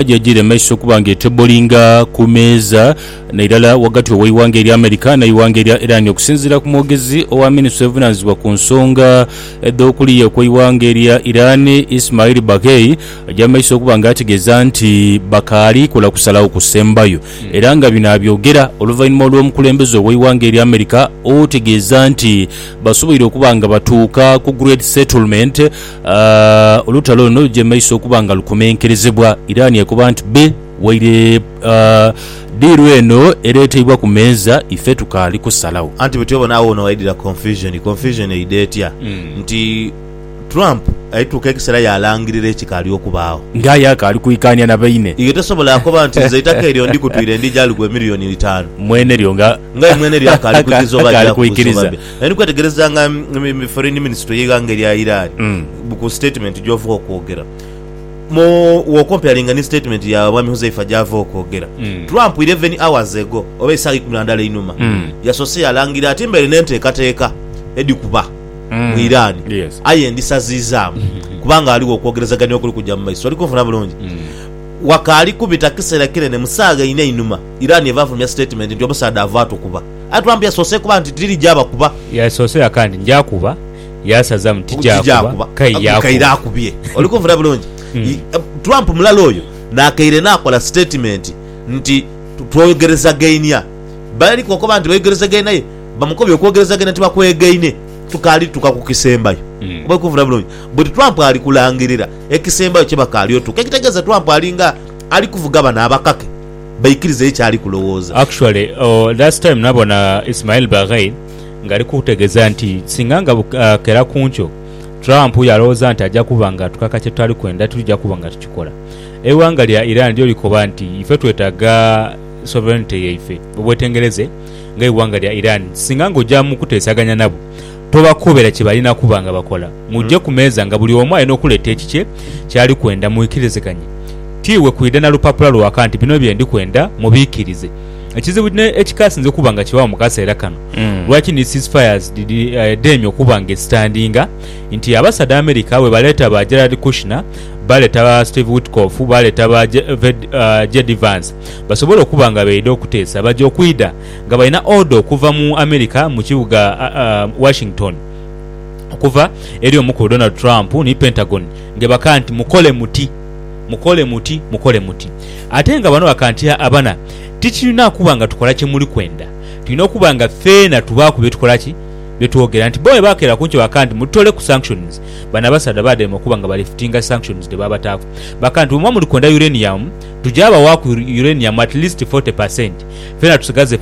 gyagire maiso okuba nga etebolinga ku meeza nairala wagati w'eighanga erya America n'eighanga erya Iran okusinziira ku mwogezi owa minisitule evunanizibwa ku nsonga edh'okuliya okw'eighanga erya Iran Ismail Baghei aja maiso okuba nga ategeeza nti bakaali kola kusalagho kusembayo era nga bino abyogera oluvainhuma olw'omukulembeze ow'eighanga erya America otegeeza nti basoboire okuba nga batuuka ku great settlement A Olutalo luno lugya mu maiso okuba nga lukomenkerezebwa. Iran ekoba nti, Be waire a diiru eno ereeteibwa ku meeza, ife tukaali kusalagho. Anti bwetyo bona agho woonawaidhira confusion. Confusion eidha etya? Nti Trump alituuka ekiseera yaalangirira ekikaali okubaagho. Nga aye akaali kwikaania na baine. Iwe tosobola koba nti, Nze eitaka eryo ndikutwire ndija lighe milioni itaanu. Mwenelyo nga. Nga aye mwenelyo akaali kwikiriza oba akaali aja kwikiriza. Naye ndi kwetegereza nga foreign minister y'eighanga erya Iran mm. ku statement gy'ova okwogera mu wokomparinga ni statement ya mwami Huzaifa gy'ava okwogera mm. Trump 11 hours ago oba esaawa ikumi na ndala einuma mm. yasose yalangira ati mbaire n'enteekateeka edhikuba mm. mu Iran yes. aye ndisaziizaamu mm-hmm. kubanga aligho okwogerezagania okuli kujja mu maiso oli kunfuna bulungi mm. wakaali kubita kiseera kinene mu saawa ina einuma Iran eva afulumya statement nti omusaadha ava atukuba Aye Trump yasoose kuba nti diri gyaba kuba. Yasoose yaka nti nja kuba, yasaza mu ti gyakuba, kaire akubye. Oli kunvuna bulungi? Trump mulala oyo nakaire nakola sitatimenti nti twogerezagainia. Bali kokoba nti bayogerezagaina aye bamukobye okwogerezagaina nti bakwegaine. Tukaali tuka ku kisembayo. Oba oli kunvuna bulungi? But Trump ali kulangirira ekisembayo kye bakaali otuka. Ekitegeeza Trump alinga ali kuvuga bano abakake. baikirize ye kyali kulowooza. Actually that's time nabona Ismail Baghei nga ali kutegeza nti singa nga bukera kunkyo Trump yalowooza nti aja kuba nga atukaka kyetutali kwenda tulija kuba nga tukikola. Eighanga lya Iran lyo likoba nti ife twetaga sovereignty yaife. Obwetengereze nga eighanga lya Iran singa nga oja mukutesaganya nabo, Tobakoobera kye balina kuba nga bakola. Muje ku meeza nga buli omu alina okuleeta ekikye ky'ali kwenda mwikiriziganye. Ti iwe kwidha na lupapula lwaka nti bino bye ndi kwenda mubiikirize. Ekizibu ekikaasinze okuba nga kibaagho mu kaseera kano, lwaki ni ceasefires dhidheemye okuba nga esitandinga nti abasaadha America bwe baleeta ba Jared Kushner, baaleeta ba Steve Witkoff, baaleeta ba JD Vance basobole okuba nga beidha okuteesa baja okwidha nga balina oda okuva mu Amerika mu kibuga Washington okuva eri omukulu Donald Trump ni Pentagon ngebaka nti mukole muti mukole muti mukole muti ate nga bano baka nti abana tikirina kuba nga tukola kyemuli kwenda tulina okuba nga feena tubaaku byetukola ki byetwogera nti bo webakera kunkyo baka nti mututole ku sanctions bano abasaadha bademe okuba nga balifutinga sanctions dhebabataaku baka nti bwemuba muli kwenda uranium tugya bawaaku uranium at least 40% fena tusigaze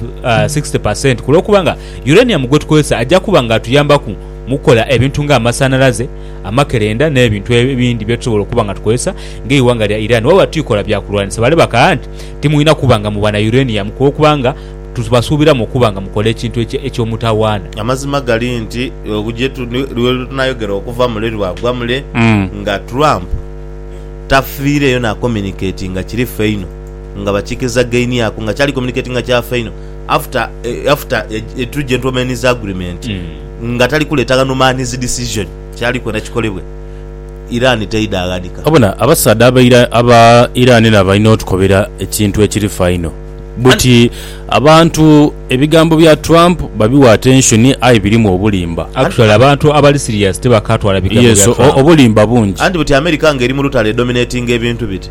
sixty per cent kulwokuba nga uranium gwetukozesa ajja kuba nga atuyambaku mukukola ebintu nga amasanalaze, amakerenda n'ebintu ebindi byetusobola okuba nga tukozesa nga eighanga lya Iran waba twikola byakulwanisa. Bale bakagha nti timwina kuba nga muba na uranium kulwokuba nga tubasuubiramu okuba nga mukola ekintu eky'omutawaana. Amazima gali nti lwetunayogera okuva mule lwagwa mule nga Trump tafiireyo nakominiketinga kiri ffe inho. nga bakikezagainiaku nga kyali communicatinga kyafaino after eh, after etu gentlemen's agreement mm. nga tali kuleta ghano man's decision kyali kwena kikolebwe Iran teida aghanika obona abasaadha abaira aba Iran na balina otukobera ekintu ekiri faino buti abantu ebigambo bya Trump babiwa attention aye birimu obulimba actually abantu abali serious tebakatwala bigambo yes, bya Trump obulimba bungi anti buti America nga eri mulutale dominatinga ebintu biti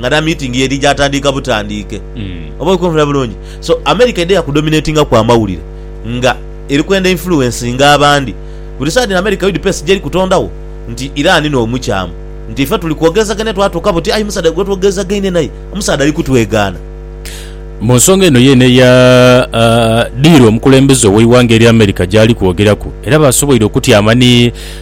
nga na meeting yeri jatandiika butandiike. Oba oli kumpulira bulungi? So America edha ku dominatingaku amawulire nga eri kwenda influencinga abandi. Buli saha dhino America udps jeri kutondagho nti Iran no mukyamu nti ife tuli kwogerezagania twatuuka buti aye omusaadha gwe twogerezagaine naye omusaadha ali kutwegaana. Mu nsonga eno yeene eya diiru omukulembeze oweighanga erya America jaali kwogeraku era basoboire okutyama ni